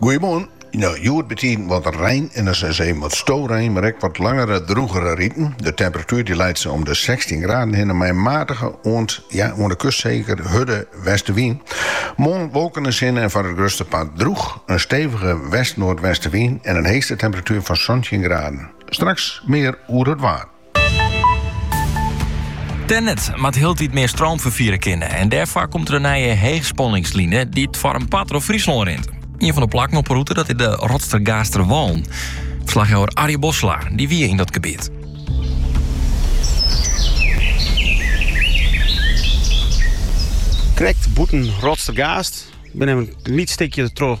Goeiemoarn. No, hjoed betiden wat rein en sa út en troch wat storein, mar ek wat langere drûgere riten. De temperatuer die leit sa om de 16 graden hinne mei matige oant ja, oan de kust seker hurde westewyn. Moarn wolken en sinne en foar it grutste part drûch. In stevige west-noardwestewyn en in heechste temperatuer fan santjin graden. Straks mear oer it waar. Tennet moat hieltyd mear stroom ferfiere kinne en dêrfoar komt der in nije heechspanningsline dy't foar in part troch Fryslân rint. Ien fan de plakken op 'e rûte dat is de Rotstergaaster Wâlen. Ferslachjouwer Arjen Bosselaar die wie yn dat gebiet. Krekt bûten Rotstergaast, binne wer in lyts stikje troch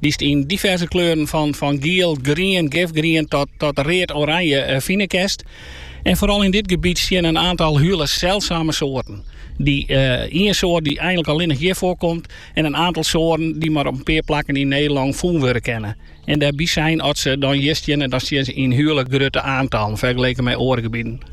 dy'tst yn diverse kleuren fan giel, grien, gifgrien tot read-oranje fine kinst. En foaral yn dit gebiet steane in aantal hiele selsame soarten. Dy ien soart dy't eintlik allinnich hjir foarkomt en in aantal soarten dy't mar op in pear plakken yn Nederlân fûn wurde kinne. En dêrby sein, as se dan hjir steane, dan steane se yn hiele grutte aantallen fergeleken mei oare gebieten.